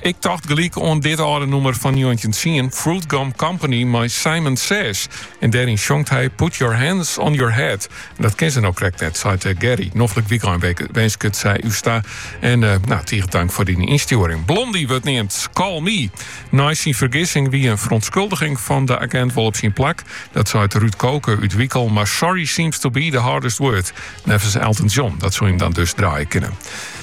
Ik tocht gelyk oan dit âlde nûmer fan njoggentjin tsien Fruitgum Company mei Simon Says, en dêryn sjongt hy Put your hands on your head. En dat kin se no krekt net, seit Gerry. Noflik wykein winsket sy ús ta en no, tige tank foar dyn ynstjoering. Blondie wurdt neamd Call Me. Nei syn fergissing wie in feronskuldiging fan de agint wol op syn plak, dat seit Ruud Koke út Wyckel, mar sorry seems to be the hardest word, neffens Elton John, dat soe him dan dus draaie kinne.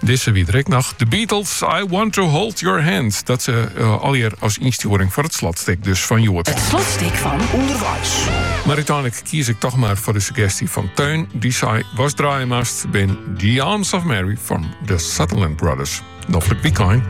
Dizze wie der ek noch. The Beatles, I Want to Hold Your Hand. Dat se eh, allier as ynstjoering foar it slotstik dus fan hjoed. It slotstik fan Underweis. Mar úteinlik kies ik toch mar foar de suggestje fan Teun. Dy sei, watst draaie moatst, bin The Arms of Mary fan The Sutherland Brothers. Noflik wykein.